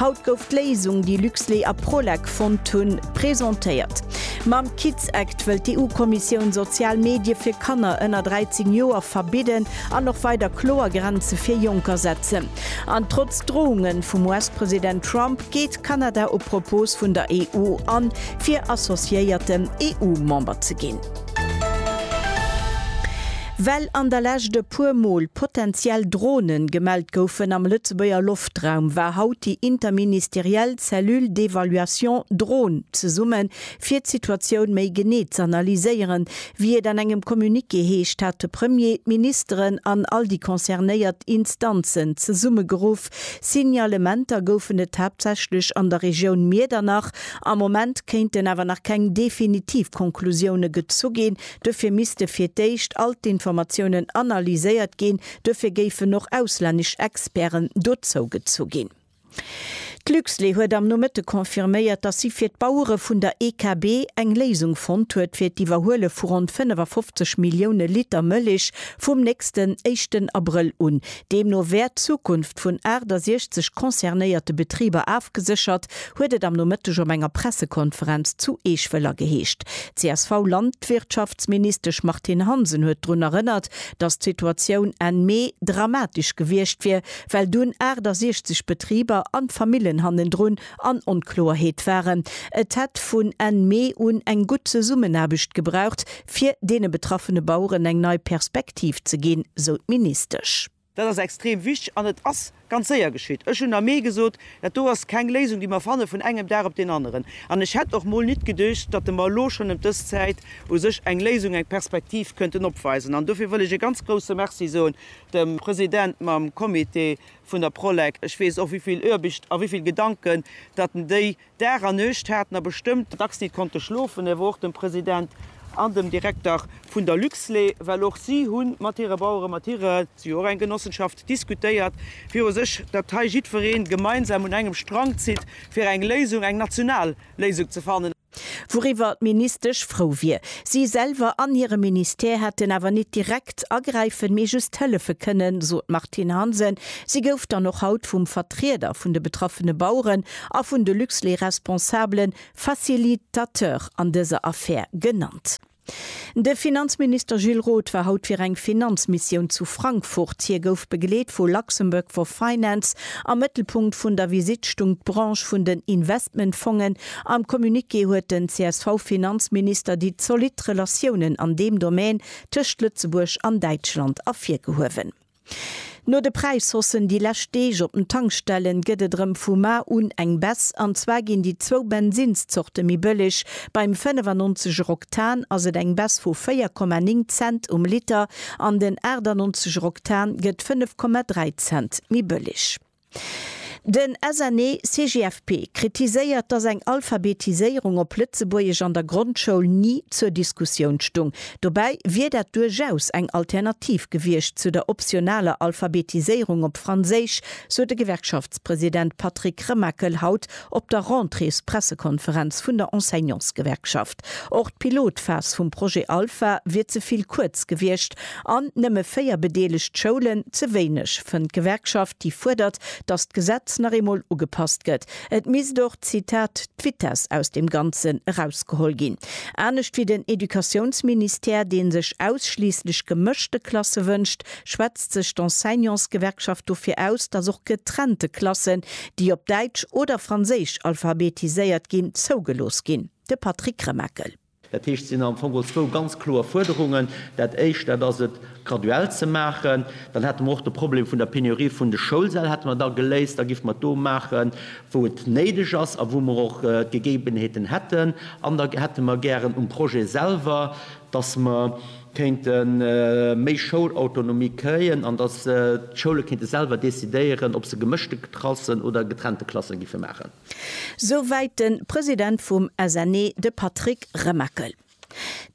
Haut gouf d'Léisung, déi Luxlait a Prolec fonnt hunn, presentéiert. Mam Kids Act wëllt d'EU-Kommissioun sozial Medie fir Kanner ënner 13 Joer verbidden an och weider kloer Grenze fir Jonker setzen. An trotz Drounge vum US-President Trump geet Kanada op Propos vun der EU an, fir associéierten EU-Member ze ginn. Well an der Lescht e puer Mol potenziell Drone gemellt goufen am Lëtzebuerger Loftrum, Haaptraum war haut déi interministeriell Cellule d'évaluation Dron zesummen, fir d'Situatioun méi genee z'analyséieren, wéi et an engem Communiqué heescht, hat de Premier d'Ministeren an all déi concernéiert Instanzen zesummegeruff. Signalementer goufen et haaptsächlech an der Regioun Miedernach. Am Moment kéinten awer nach keng definitiv Konklusioune gezu ginn. Dofir misste fir d'éischt all d'Informatiounen analyséiert ginn, Duerfir géifen och auslännesch Experten dozou gezu ginn. D'Luxlait huet am Nomëtte confirméiert, datt si fir d'Bauere vun der EKB eng Léisung fonnt huet fir d'Iwwerhuele vu ronn 55 Millioune Liter Mëllech vum nächsten éischten Abrëll un. Deemno wär d'Zukunft vun 68 concernéierte Betriber afgeséchert, huet et am Nomëtteg op enger Pressekonferenz zu Eech-Wëller geheescht. D'CSV-Landwirtschaftsministesch Martine Hansen huet drun erënnert, dass d'Situatioun Enn Mee dramatesch gewiescht wier, well dunn 68 Betriber an d'Famillen hannendrun an Onkloerheet waren. Et hätt vun Enn Mee un eng gutt Zesummenaarbecht gebraucht, fir deene betraffene Baueren eng nei Perspektiv ze ginn, sou d'Ministesch. Dat ass extrem wichteg an et ass ganz séier geschitt. Ech hunn am Mee gesot, dat do ass keng Léisung, déi mer fanne vun engem Dag op deen aneren. An ech hätt och mol nit geduecht, datt e mer elo schonn ëm dës Zäit u sech eng Léisung, eng Perspektiv kënnten opweisen. An dofir wëll ech e ganz grouse Merci soen dem President mam Comité vun der Prolec. Ech weess och, wéi vill Oarbicht a wéi vill Gedanken datt en déi Dag a Nuecht haten a bestëmmt dacks nit konnte schlofen, awer och dem President an dem Direkter vun der Luxlait, well och si hu mat hire Baueren, mat hire, si hu och eng Genossenschaft, diskutéiert viru sech, datt hei jiddweree gemeinsam un engem Strang zitt, fir eng Léisung, eng national Léisung ze fannen. Wouriwwer d'Ministesch frou wier. Si selwer an hire Ministère hätten awer nit direkt agräifen, mee just hëllefe kënnen, sot d'Martine Hansen. Si gouf dann och haut vum Vertrieder vun de betraffene Baueren a vun de Luxlait-Responsabele Facilitateur an dëser Affär genannt. De Finanzminister Gilles Roth war haut fir eng Finanzmissioun zu Frankfurt. Hie gouf begleet vu Luxembourg for Finance. Am Mëttelpunkt vun der Visitt stung d'Branche vun den Investmentfongen. Am Communiqué huet den CSV-Finanzminister déi zolidd Relatiounen an deem Domän tëscht Lëtzebuerg an Däitschland ervirgehuewen. No de Präishossen déi lescht Deeg op den Tankstellen gëtt et erëm vu mar un eng Baisse. An zwar ginn déi zwou Bensinnszorte méi bëlleg. Beim 95 er Oktan ass et eng Baisse vu 4,9 Cent um Liter an den 98 er Oktan gëtt 5,3 Cent méi bëlleg. Den SNE-CGFP kritiséiert, datt eng Alphabetiséierung op Lëtzebuergesch an der Grondschoul ni zur Diskussioun stung. Dobäi wier dat duerchaus eng Alternativ gewiescht zu der optionaler Alphabetiséierung op Franséisch, sot de Gewerkschaftspresident Patrick Remakel haut Op der Rentréespressekonferenz vun der Enseignantsgewerkschaft. Och d'Pilotphas vum Projet Alpha wier ze vill kuerz gewiescht an nëmme véier bedeelegt Schoulen ze wéineg, fënnt d'Gewerkschaft, déi fuerdert, datt d'Gesetz nach eemol ugepasst gëtt. Et misst och, Zitat, d'Vitess aus dem Ganzen erausgeholl ginn. Anescht wéi den Educatiounsministère, dee sech ausschliisslech gemëschte Klasse wënscht, schwätzt sech d'Enseignantsgewerkschaft dofir aus, datt och getrennte Klassen, déi op Däitsch oder Franséisch alphabetiséiert ginn, zougelooss ginn. De Patrick Remakel. Dat heescht, et sinn am Fong geholl zwou ganz kloer Fuerderungen. Dat Éischt, dat ass et graduell ze maachen. Dann hätte mer och de Problem vun der Penurie vun de Schoulsäll hätte mer da geléist. Da géife mer et do maachen, wou et néideg ass a wou mer och d'Gegebenheeten hätten. An da hätte mer gären um Projet selwer, dass mer kéinte méi Schoulautonomie kréien an dass d'Schoule kéinte selwer decidéieren, ob se gemëschte Klassen oder getrennte Klasse géife maachen. Souwäit de President vum SNE, de Patrick Remakel.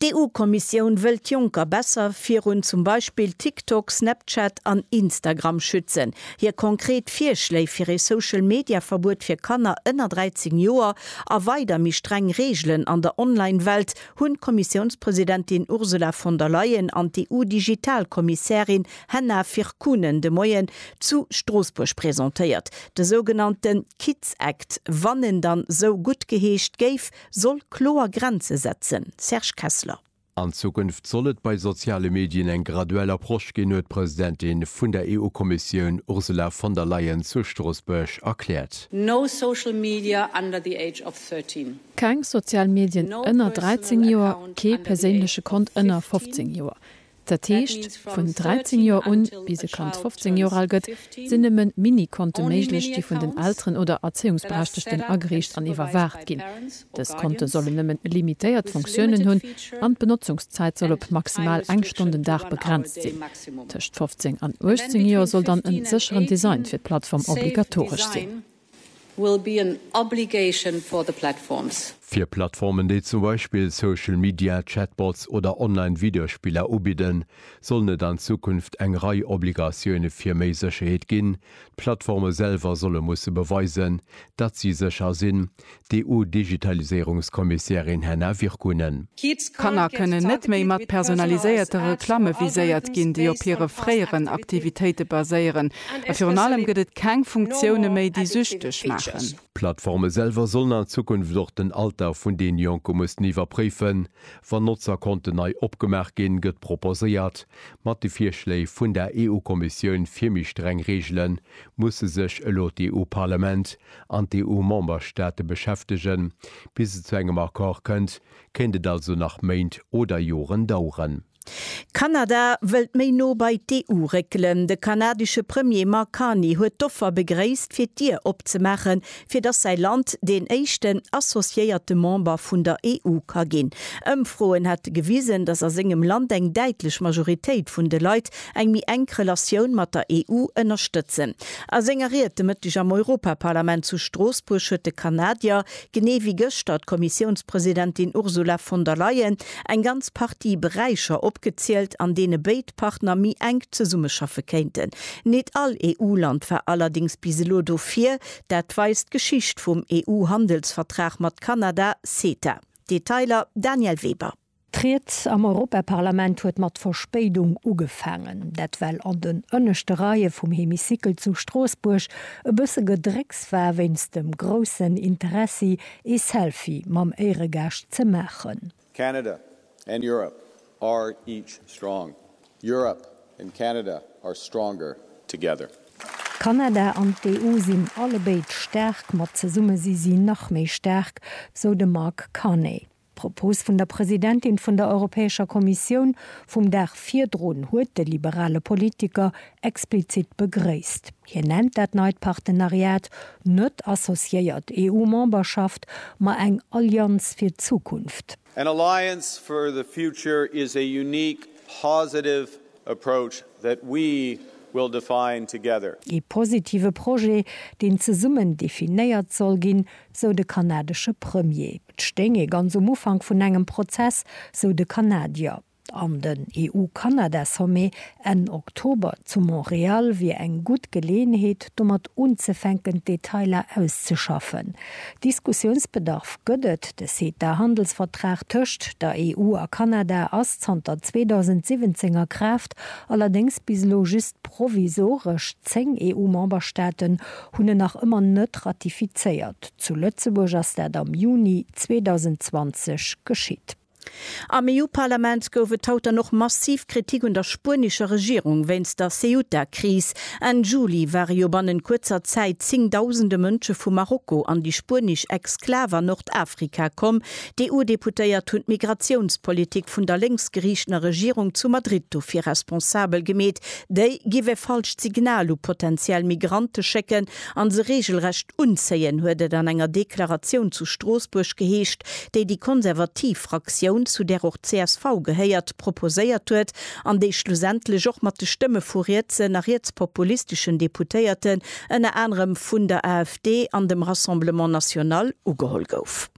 D'EU-Kommissioun wëll d'Jonker besser virun zum Beispill TikTok, Snapchat an Instagram schützen. Hir konkret Virschléi fir ee Social-Media-Verbuet fir Kanner ënner 13 Joer a weider méi streng Reegelen an der Online-Welt hunn d'Kommissiounspresidentin Ursula von der Leyen an d'EU-Digital-Kommissärin Henna Virkkunen de Moien zu Stroossbuerg presentéiert. De sougenannte Kids Act, wann en dann esou guttgeheescht géif, soll kloer Grenze setzen. Serge Kessler. An Zukunft soll et bei soziale Medien eng graduell Approche ginn, huet d'Presidentin vun der EU-Kommissioun Ursula von der Leyen zu Stroossbuerg erkläert. No social media under the age of 13. Keng sozial Medien ënner 13 Joer, kee perséinleche Kont ënner 15 Joer. Dat heescht, vun 13 Joer un, bis e Kand 15 Joer al gëtt, sinn nëmme Mini-Konte méiglech, déi vun den Elteren oder Erzéiungsberechtegten ageriicht an iwwerwaacht ginn. Dës Konte sollen nëmmen limitéiert Funktiounen hunn an d'Benotzungszäit soll op maximal eng Stonn den Dag begrenzt sinn. Tëscht 15 an 18 Joer soll dann e sécheren Design fir d'Plattform obligatoresch sinn. will be an obligation for the platforms. Fir Plattformen, déi zum Beispill Social Media, Chatbots oder online Videospiller ubidden, sollen et an Zukunft eng Rei Obligatioune fir méi Sécherheet ginn. D'Plattforme selwer solle musse beweisen, datt si sécher sinn, d'EU-Digitaliséierungskommissärin Henna Virkkunen. Kanner kënnen net méi mat personaliséierte Reklamme viséiert ginn, déi op hire fréieren Aktivitéite baséieren. A virun allem gëtt et keng Funktioune méi, déi süchteg maachen. D'Plattforme selwer sollen an Zukunft och den Alter vun den Jonke mussen iwwerpréifen, wann Notzerkonten nei opgemaach ginn, gëtt proposéiert. Mat de Virschléi vun der EU-Kommissioun fir méi streng Reegelen musse sech elo d'EU-Parlament an d'EU-Memberstaate beschäftegen. Bis et zu engem Accord kënnt, kéint et also nach Méint oder Joren daueren. Kanada wëllt méi no bei d'EU réckelen. De kanadesche Premier Mark Carney huet d'Offer begréisst, fir d'Dier opzemaachen, fir datt säi Land deen éischten associéierte Member vun der EU ka ginn. Ëmfroen hätte gewisen, datt a sengem Land eng däitlech Majoritéit vun de Leit eng méi enk Relatioun mat der EU ënnerstëtzen. A senger Ried de Mëtteg am Europaparlament zu Stroossbuerg huet de Kanadier, genee wéi gëschter d'Kommissiounspresidentin Ursula von der Leyen, eng ganz Partie Beräicher opgezielt, an deene béid Partner méi enk zesummeschaffe kéinten. Nit all EU-Land war allerdéngs bis elo dofir, dat weist d'Geschicht vum EU-Handelsvertrag mat Kanada, CETA. Detailer, Danièle Weber. D'Ried am Europaparlament huet mat Verspéidung ugefaangen. Dat well an den ënneschte Reie vum Hemicycle zu Stroossbuerg e bësse Gedrécks war wéinst dem groussen Interessi ee Selfie mam Éieregaascht ze maachen. Canada and Europe are each strong. Europe and Canada are stronger together. Kanada an d'EU sinn allebéid staark, mat zesumme si si nach méi staark, sou de Mark Carney. D'Propos vun der Presidentin vun der Europäescher Kommissioun vum Dag virdrun huet de liberale Politiker explizit begréisst. Hien nennt dat neit Partenariat net associéiert EU-Memberschaft, ma eng Allianz fir d'Zukunft. An alliance for the future is a unique positive Approach that we will define together. Ee positive Projet, deen zesummen definéiert soll ginn, sou de kanadesche Premier. Et stéing ee ganz um Ufank vun engem Prozess, sou de Kanadier. An den EU-Kanada-Sommet Enn Oktober zu Montreal wier eng gutt Geleeënheet, domat unzefänken, d'Detailer auszeschaffen. Diskussiounsbedarf gëtt et, De CETA-Handelsvertrag tëscht der EU a Kanada ass zanter 2017 a Kraaft, allerdéngs bis elo just provisoresch. Zéng EU-Memberstaaten hunn en nach ëmmer net ratifizéiert. Zu Lëtzebuerg ass dat am Juni 2020 geschitt. Am EU-Parlament gouf et haut dann och massiv Kritik un der spuenescher Regierung wéinst der Ceuta-Kris. Enn Juli ware jo bannent kuerzer Zäit zéngdausende Mënsche vu Marokko an déi spuenesch Exklav an Nordafrika komm. D'EU-Deputéiert hunn d'Migratiounspolitik vun der lénksgeriichtener Regierung zu Madrid dofir responsabel gemeet. Déi giff e falscht Signal u potenziell Migrante schécken, an se reegelrecht unzéien, huet et an enger Deklaratioun zu Stroossbuerg geheescht, déi déi konservativ Fraktioun, zu där och csv gehéiert, proposéiert huet an déi schlussendlech och mat de Stëmme vu rietsen a rietspopulisteschen Deputéierten, ënner anerem vun der AfD an dem Rassemblement National, ugeholl gouf.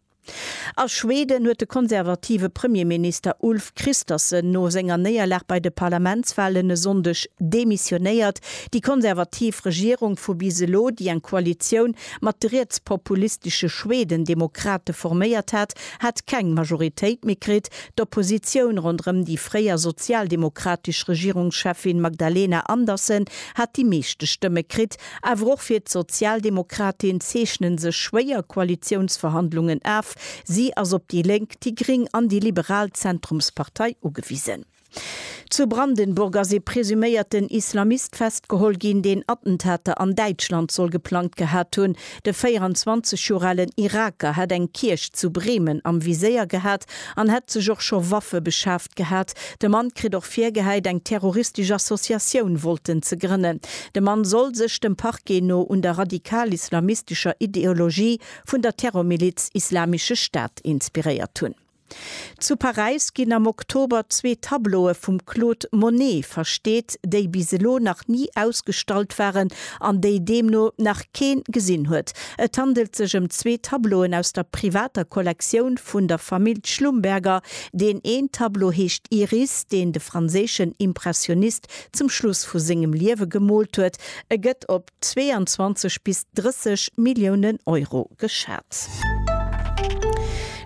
A Schweden huet de konservative Premierminister Ulf Kristersson no senger Néierlag bei de Parlamentswalen e Sonndeg demissionéiert. Déi konservativ Regierung vu bis elo, déi eng Koalitioun mat de rietspopulistesche Schweden-Demokrate forméiert hat, hat keng Majoritéit méi kritt. D'Oppositioun ronderëm déi fréier sozialdemokratesch Regierungscheffin Magdalena Andersson hat déi meeschte Stëmme kritt. Awer och fir d'Sozialdemokratin zeechnen sech schwéier Koalitiounsverhandlungen af. Si ass op déi Lénk, déi Gring an déi liberal Zentrumspartei ugewisen. Zu Brandenburg ass ee presuméierten Islamist festgeholl ginn, deen Attentater an Däitschland soll geplangt gehat hunn. De 24 Joer alen Iraker hätt eng Kierch zu Bremen am Viséier gehat an hätt sech och scho Waffe beschaf. Gehat. De Mann kritt och virgehäit, eng terroristesch Associatioun wollten ze grënnen. De Mann soll sech, dem Parquet no, un der radikal-islamistescher Ideologie vun der Terrormiliz Islamische Staat inspiréiert hunn. Zu Paräis ginn am Oktober zwee Tableaue vum Claude Monet versteet, déi bis elo nach ni ausgestallt waren an déi deemno nach kee gesinn huet. Et handelt sech ëm zwee Tableauen aus der privater Kollektioun vun der Famill Schlumberger, Deen een Tableau heescht Iris, deen de franséischen Impressionist zum Schluss vu sengem Liewe gemoolt huet. E gëtt op 22 bis 30 Milliounen Euro geschat.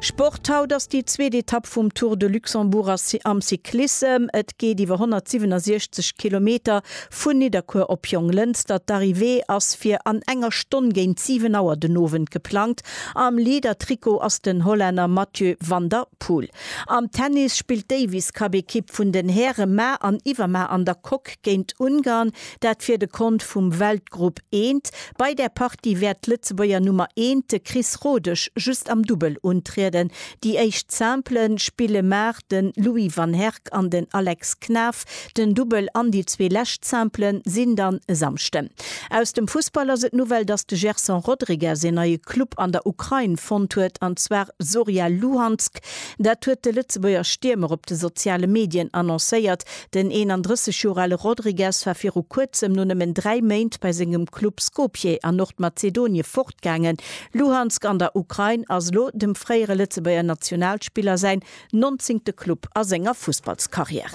Sport, Haut ass déi zweet Etapp vum Tour de Luxembourg am Cyclissem. Et geet iwwer 167 Kilometer vun Nidderkuer op Jonglënster. D'Arrivée ass fir an enger Stonn géint 7 Auer den Owend geplangt. Am Leader-Trikot ass den Hollänner Mathieu van der Poel. Am Tennis spillt d'Davis-Cup-Ekipp vun den Häre mar an iwwermar an der Coque géint Ungarn, dat fir de Kont vum Weltgrupp I. Bei där Partie wäert d'Lëtzebuerger Nummer eent, de Chris Rodesch, just am Dubbel untrieden. Déi éischt Simple spille mar de Louis van Herk an den Alex Knaff den Dubbel an déi zwee lescht Simplen sinn dann e Samschden. Aus dem Fussball ass et d'Nouvelle, dass de Gerson Rodrigues een neie Club an der Ukrain fonnt huet, an zwar Zorya Luhansk. Dat huet de Lëtzebuerger Stiermer op de soziale Medien annoncéiert. Den 31 Joer ale Rodrigues war viru kuerzem no nëmmen dräi Méint bei sengem Club Skopje an Nordmazedonie fortgaangen. Luhansk an der Ukrain ass elo dem fréiere Lëtzebuerger Nationalspiller säin nonzéngte Club a senger Fussballskarriär.